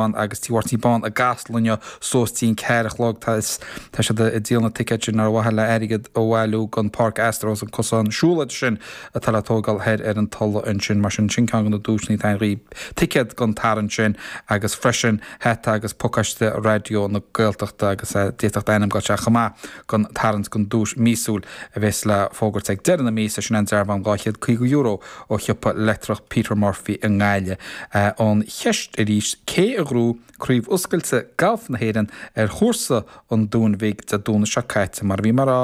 bán agus tí Mháirtín bán i gCasla inniu suas dtí'n ceathair a chlog tá siad ag díol na ticéid sin ar mhaithe le airgead a bhailiú don Pháirc Astro is an cosán siúlóide sin atá le tógáil thoir ar an Tulaigh ansin mar sin sin ceann de na duaiseanna atá ann dhaoibh ticéad don tarraingt sin agus freisin hata agus pacáiste Raidió na Gaeltachta agus d'fhéadfadh d'ainm a dhul isteach chomh maith don tarraingt don duais mhíosúil a bheas le fógairt ag deireadh na míosa sin an dearbhán €250 ó shiopa leictreach Peter Murphy i nGaillimh. An cheist arís, cé a ghnóthaigh craobh oscailte gailf na hÉireann ar chúrsa an Dúin Bhig Dé Domhnaigh seo caite? Mar a bhí mé a rá,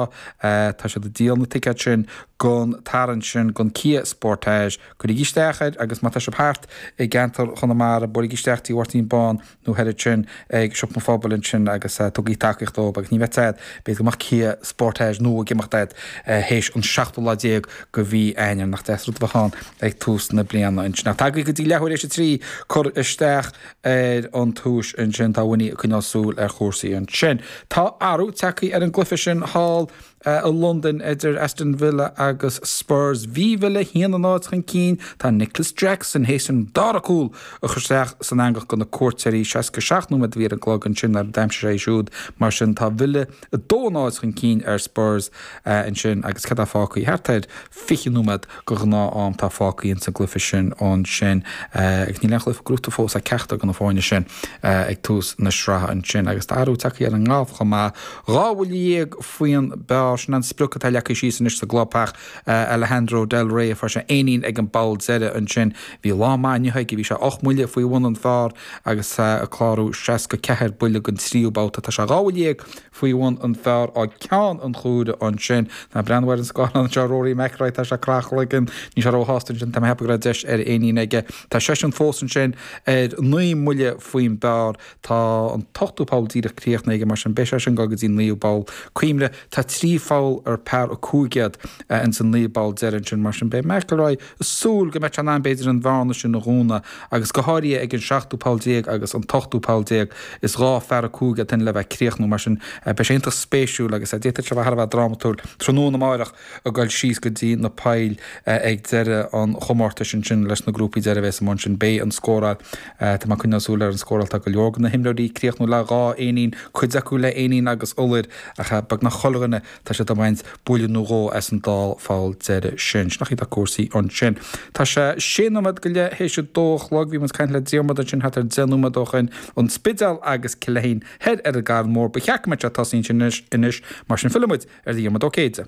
tá siad ag díol na ticéad sin don tarraingt sin don Kia Sportage. Cuirigí isteach air agus má tá sibh thart i gceantar Chonamara, buailigí isteach Tigh Mháirtín Bán. nó thoir ansin ag Siopa an Phobail ansin agus tugaigí tacaíocht dóibh agus ní bheidh a fhios agat, b'fhéidir go mbeadh Kia Sportage nua ag imeacht agat théis an seachtú lá déag go mhí Eanáir. Nach deas rud a bheadh ann ag tús na bliana ansin. Ach tá agaibh go dtí leathuair théis a trí, cur isteach ar an duais ansin, tá Winnie ag coinneáil súil ar chúrsaí ansin. Tá athrú tagtha ar an gcluiche sin thall. i Londain idir Aston Villa agus Spurs. Bhí Villa 1-0 chun cinn, tá Nicholas Jackson théis an dara cúl a chur isteach san eangach do na cuairteoirí. 67 nóiméad a bhí ar an gclog ansin nuair a d'aimsigh sé é siúd. Mar sin tá Villa 2-0 chun cinn ar Spurs ansin agus céard atá fágtha? Thart ar 20 nóiméad de ghnáth-am atá fágtha ins an gcluife sin ansin agus níl aon chluife gnóite fós ag ceachtar go na foirne sin ag tús na sraithe ansin agus tá athrú tagtha ar an ngalf chomh maith. Dhá bhuille dhéag faoin bpar sin an sprioc atá leagtha síos anois sa gclubtheach Alejandro Del Rey fuair sé éinín ag an bpoll deireadh ansin. Bhí lá maith inniu aige, bhí sé ocht mbuille faoi bhun an phar agus é ag clárú seasca ceathair buille don tríú babhta. Tá sé dhá bhuille dhéag faoi bhun an phar ag ceann an chúire ansin. Tá mé ag breathnú ar an scáthlán anseo, Rory McIlroy, tá sé ag croitheadh a chloigeann, níl sé róshásta ansin, tá mé a cheapadh go raibh deis ar éinín aige. Tá seisean fós ansin ar naoi mbuille faoin bpar. Tá an t-ochtú poll díreach críochnaithe aige mar sin beidh seisean ag dul go dtí an naoú bpoll cuimhnigh tá trí pholl ar par a cúig iad ins na naoi bpoll deiridh ansin mar sin beidh McIlroy ag súil go mbeidh sé in ann b'fhéidir an bhearna sin a dhúnadh agus go háirithe ag an seachtú poll déag agus an t-ochtú poll déag. Is dhá phar a cúig iad sin le bheith ag críochnú mar sin beidh sé iontach spéisiúil agus d'fhéadfadh sé bheith thar a bheith drámatúil tráthnóna amárach. ag dul síos go dtí na poill ag deireadh an chomórtais ansin leis na grúpaí deireadh a bheas amuigh ansin. Beidh an scóráil, tá mé ag coinneáil súil ar an scóráil, tá go leor de na himreoirí ag críochnú le dhá éinín, cuid acu le éinín agus iolar, ach beagnach chuile dhuine, tá siad ag baint buille nó dhó as an dá pholl deireadh sin. Sin é an chaoi atá cúrsaí ansin. Tá sé sé nóiméad go leith théis a dó a chlog, bhí muid ag caint le Diarmaid ansin thart ar deich nóiméad ó shin, an Spidéal agus Cill Fheinshain thoir ar an gCarn Mór. Ba cheart go mbeadh sé tosaithe ansin anois, mar sin fillfidh muid ar Dhiarmaid Ó Céide.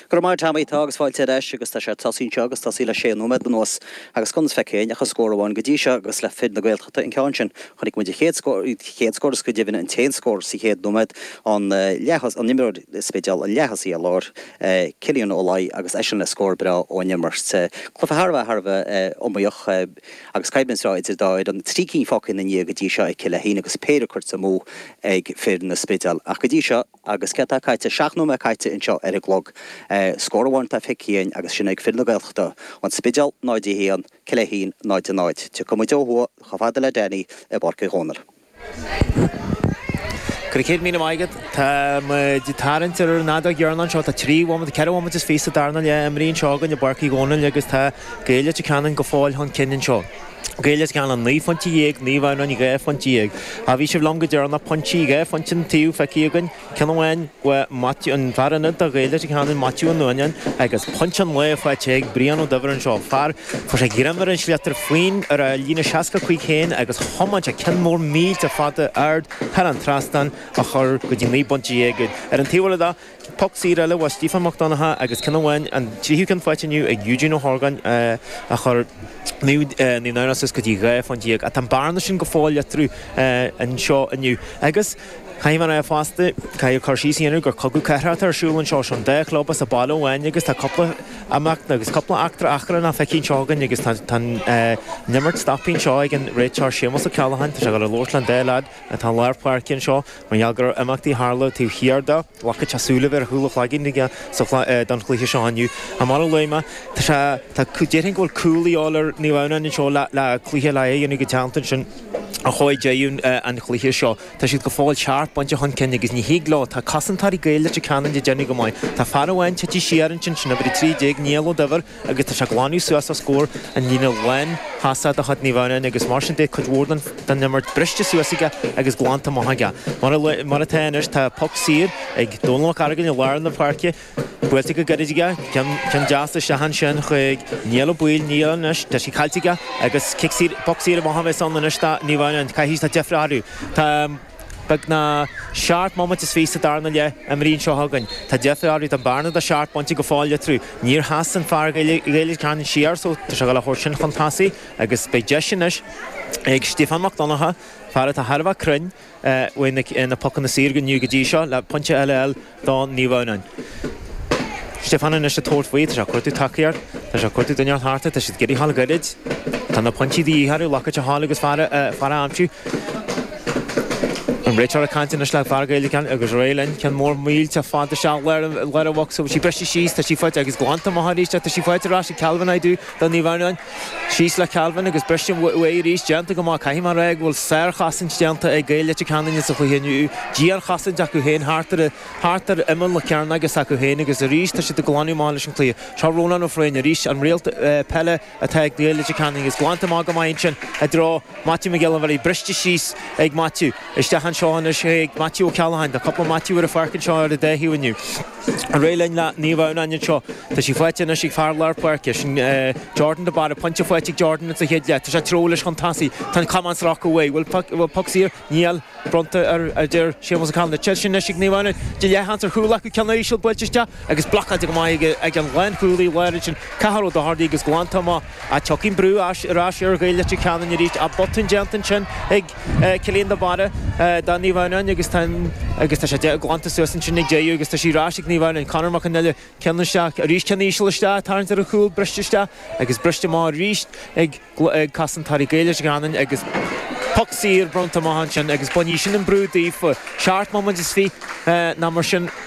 Go raibh maith a't Tommy, tá agus fáilte ar ais agus tá sé tosaithe anseo agus tosaithe le sé nóiméad anuas agus gan feicthe ach an scór amháin go dtí seo agus le fir na Gaeltachta an ceann sin. Chonaic muid an chéad scór, chéad scór is go deimhin an t-aon scór sa chéad nóiméad an leath an imreoir Spidéil an leath-thosaí ar lár Cillian Ó Laoi agus eisean le scór breá ón imirt. Cluiche thar a bheith, thar a bheith iomaíoch agus coimhlint bhreá idir dá fhoireann. Trí cinn fágtha ina ndiaidh go dtí seo ag Cill Ainnín agus péire cuirte amú ag fir an Spidéil ach go dtí seo, Agus céard atá caite? Seacht nóiméad caite anseo ar an gclog. Scór amháin atá feicthe againn agus sin ag fir na Gaeltachta. An Spidéal 0-1, Cill Ainnín 0-0. Tiocfaidh muid ó thuaidh chomh fada le Damien i bPáirc Uí Dhónaill. Go raibh céad míle maith agat. Tá muid ag tarraingt ar an fheadóg dheireanach anseo. Tá trí bhomaite, ceithre bhomaite is fiche sa darna leath imeartha anseo againn i bPáirc Uí Dhónaill agus tá Gaeil Leitir Ceanainn go fóill chun cinn anseo. Gaeil Leitir Ceanainn naoi phointe dhéag, Naomh Adhamhnáin dhá phointe dhéag. Ó bhí sibh liom go deireanach, pointí, dhá phointe an taobh feicthe againn, ceann amháin uaidh Maitiú, an fear ionaid do Ghaeil Leitir Ceanainn, Maitiú Ó Nuanáin, agus pointe an lae faighte ag Brian Ó Duibhir anseo, fuair sé greim ar an sliotar faoin ar a líne seasca a cúig féin agus thiomáin sé ceann mór millteach fada ard thar an trasnán a chur go dtí naoi bpointe dhéag. Ar an taobh eile de. Poc saor eile ó Stiofán Mac Donnacha agus ceann amháin, an tríú ceann faighte inniu ag Eugene Ó hOrgáin, a chuir Naomh Adhamhnáin suas go dtí 12 phointe. Ach tá an bearna sin go fóill eatarthu anseo inniu agus caithfidh mé a rá fosta, caithfidh cur síos a dhéanamh gur cogadh cathartha atá ar siúl anseo. Seo an dá chlub as an bhaile amháin agus tá cúpla imeacht agus cúpla eachtra achrann feicthe anseo againn agus tá an imirt stoptha anseo ag an réiteoir Séamus Ó Ceallacháin. Tá sé ag dul a labhairt le an dá lead atá i lár páirce anseo. Mar gheall go raibh imeachtaí tharla taobh thiar dó, ghlacfadh sé súile a bheith ar chúl a chloiginn aigesean don chluiche seo inniu. Ach mar a luaigh mé. Tá sé, tá, déarfainn go bhfuil cúl a dhíobháil ar Naomh Adhamhnáin anseo le, le cluiche le a dhéanamh go teannta ansin a chomhair deireadh an chluiche seo. Tá siad go fóill seacht bpointe chun cinn agus ní thig leo, tá cosantóirí Gaeil Leitir Ceanainn ag déanamh go maith. Tá fear amháin tite siar ansin, sin uimhir 13, Niall Ó Duibhir, agus tá sé ag glanadh suas os comhair an líne lántosaigh de chuid Naomh Adhamhnáin agus mar sin beidh cuid mhór den imirt briste suas aige agus glanta amach aige. Mar atá anois tá poc saor ag Dónal Mac Aragain i lár na páirce, buailte go gairid aige, ceann deas isteach ansin chuig Niall Ó Baoill, Niall anois, tá sé caillte aige agus cic saor, poc saor amach a bheas ann anois do Naomh Adhamhnáin, caithfidh, tá deifre orthu. Tá. Beagnach seacht mbomaite is fiche sa darna leath imeartha anseo againn. Tá deifre orthu, tá an bearna de sheacht bpointe go fóill eatarthu. Níor sheas an fear Gaeil Leitir Ceanainn siar so tá sé ag gabháil a thabhairt sin chun tosaigh agus beidh deis anois ag Stiofán Mac Donnacha, fear atá thar a bheith cruinn ó na pocanna saor inniu go dtí seo, le pointe eile a fháil. do Naomh Adhamhnáin. Stiofán anois ag tabhairt faoi, tá sé ag cuartú tacaíocht, tá sé ag cuartú duine a tharrtháil, tá siad ag iarraidh a ghabháil go gairid. Tá na pointí de dhíth orthu, liathróid a fháil agus fear a aimsiú. An réiteoir ag caint anois le fear Gaeil Leitir Ceanainn agus ar aghaidh linn, ceann mór millteach fada isteach lár an bhocsa, tá sí briste síos, tá sí faighte agus glanta amach arís, tá sí faighte ar ais ag Calvin Aidoo do Naomh Adhamhnáin. Síos le Calvin agus briste uaidh arís. Déanta go maith. Caithfidh mé a rá go bhfuil sárchosaint déanta ag Gaeil Leitir Ceanainn sa chluiche inniu. Dianchosaint acu féin thart ar imeall na cearnóige s'acu féin agus arís tá siad ag glanadh amach leis an tsliotar. Seo Rónán Ó Frain arís, an réalt peile atá ag Gaeil Leitir Ceanainn agus glanta amach go maith ansin i dtreo Maitiú Mac Giolla Bharraigh. Briste síos ag Maitiú. Isteach anseo anois chuig Maitiú Ó Ceallacháin. Tá cúpla Maitiú ar an pháirc anseo ar an dá thaobh inniu. Ar aghaidh linn le Naomh Adhamhnáin anseo. Tá sí faighte anois ag fear lár páirce, sin Jordan de Barra. Pointe faighte ag Jordan insa chéad leath. Tá sé ag treabhadh leis chun tosaigh. Tá an camán sractha uaidh. Bhfuil bhfuil poc saor? Níl. Bronnta air a deir Séamus Ó Callainne. Tá sé anois ag Naomh Adhamhnáin. Tá leathsheans ar chúl acu. Ceann íseal buailte isteach agus blocáilte go maith ag an lánchúlaí láir ansin Cathal Ó Dochartaigh agus glanta amach Ach tiocfaidh brú ar ais ar Ghaeil Leitir Ceanainn arís. Tá botún déanta ansin ag Cillian de Barra do Naomh Adhamhnáin agus tá sé glanta suas ansin ag Deaghadh agus tá sí ar ais ag Naomh Adhamhnáin. Conor Mac an Ille ceann isteach arís, ceann íseal isteach ag tarraingt ar an chúl, briste isteach agus briste amach arís ag cosantóirí Gaeil Leitir Ceanainn agus poc saor bronnta amach ansin agus bainfidh sin an brú daofa. Seacht mbomaite is fiche ná mar sin.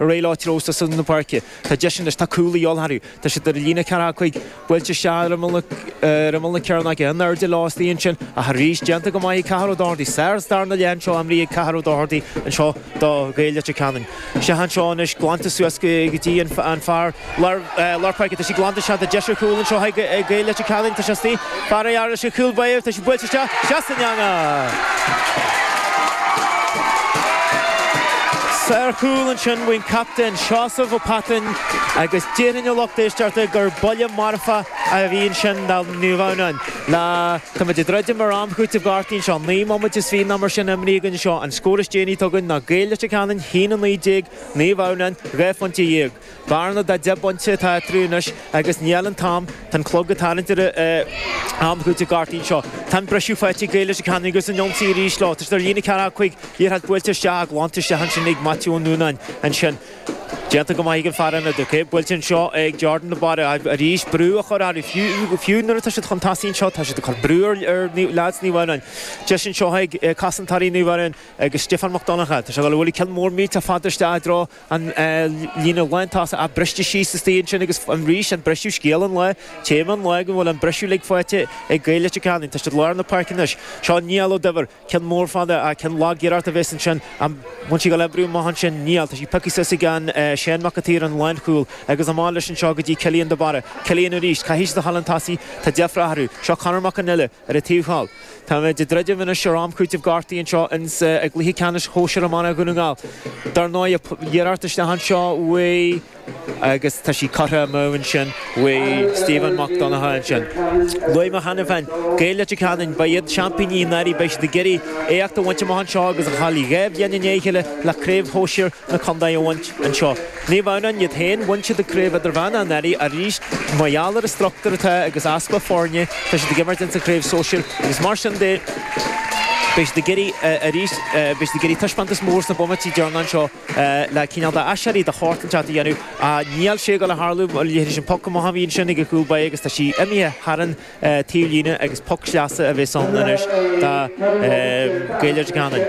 Ar aghaidh leo ag treabhadh suas na páirce. Tá deis anois, tá cúl de dhíobháil orthu. Tá siad ar líne ceathracha cúig. Buailte isteach ar imeall na cearnóige. In airde leo istigh ansin ach arís déanta go maith ag Cathal Ó Dochartaigh. Sár darna leath anseo imrithe ag Cathal Ó Dochartaigh anseo do Gaeil Leitir Ceanainn. Isteach anseo anois glanta suas go dtí an fear. lár páirce, tá sí glanta, is seans deis ar chúl anseo ag Gaeil Leitir Ceanainn, tá seans di. Fear ar fhear leis an chúl báire, tá sí buailte isteach, seans na ndearna! Sárchúl ansin ón chaptaen Seosamh Ó Pattáin agus déarfainn a lucht éisteachta gur buille marfa a bhí ansin do Naomh Adhamhnáin. Lá, táimid ag druidim ar am cúitimh gortuithe anseo, naoi mbomaite is fiche ná mar sin a imríodh anseo, an scór is déanaí atá againn ná Gaeil Leitir Ceanainn, a haon 19, Naomh Adhamhnáin, dhá phointe dhéag. Bearna de 10 bpointe atá eatarthu anois agus níl an t-am, tá an clog ag tarraingt ar am cúitimh na ngortuithe anseo. Tá an briseadh faighte ag Gaeil Leitir Ceanainn agus ar an ionsaí arís leo. Tá siad ar líne ceathracha cúig, liathróid buailte isteach, glanta isteach ansin ag Maitiú Ó Nuanáin. Ansin déanta go maith ag an fear ionad. Ok, buailte anseo ag Jordan de Barra. Arís brú á chur orthu, fiú fiú nuair atá siad chun tosaigh anseo, tá siad ag cur brú ar ar leaids Naomh Adhamhnáin. Deis anseo ag cosantóirí Naomh Adhamhnáin agus Stiofán Mac Donnacha. Tá sé ag dul a bhualadh ceann mór millteach fada isteach i dtreo an líne lántosaigh briste síos istigh ansin agus arís an briseadh scéal an lae, téama an lae go bhfuil an briseadh uilig faighte ag Gaeil Leitir Ceanainn. Tá sí lár na páirce anois. Seo Neil Ó Duibhir, ceann mór fada, ceann lag iarracht a bhéas ansin, an bhfuil sí ag gabháil le brú amach ansin, níl, tá sí pioctha suas ag an Seán Mac an tSaoir an lánchúl agus amach leis anseo go dtí Cillian de Barra, Cillian arís, caithfidh siad a ghabháil chun tosaigh, tá deifre orthu. Seo Conor Mac an Iola. Ar an taobh thall, táimid ag druidim anois ar am cúitimh gortaithe anseo ins an gcluiche ceannais shóisir iomána Dhún na nGall. Dar ndóigh, iarracht isteach anseo uaidh agus tá sí curtha amú ansin uaidh Stephen Mac Donnacha ansin. Luaigh mé cheana féin, Gaeil Leitir Ceanainn, ba iad seaimpíní anuraidh, beidh siad ag iarraidh éacht a bhaint amach anseo agus a ghabháil dhá bhliain i ndiaidh a chéile le craobh shóisir na condae a bhaint anseo. Naomh Adhamhnáin iad féin, bhain siad an Craobh Idirmheán anuraidh arís. Mar gheall ar an struchtúr atá agus easpa foirne tá siad ag imirt ins an Craobh Sóisear agus mar sin de beidh siad ag iarraidh arís, beidh siad ag iarraidh taispeántas mór sna bomaití deireanacha seo le cineál de aiséirí, de shórt inteacht a dhéanamh. Níl sé ag dul a tharlú mar leithéidí sin poc amach a bhí ansin ag an gcúl báire agus tá sí imithe thar an taobh líne agus poc sleasa a bheas ann anois do Gaeil Leitir Ceanainn.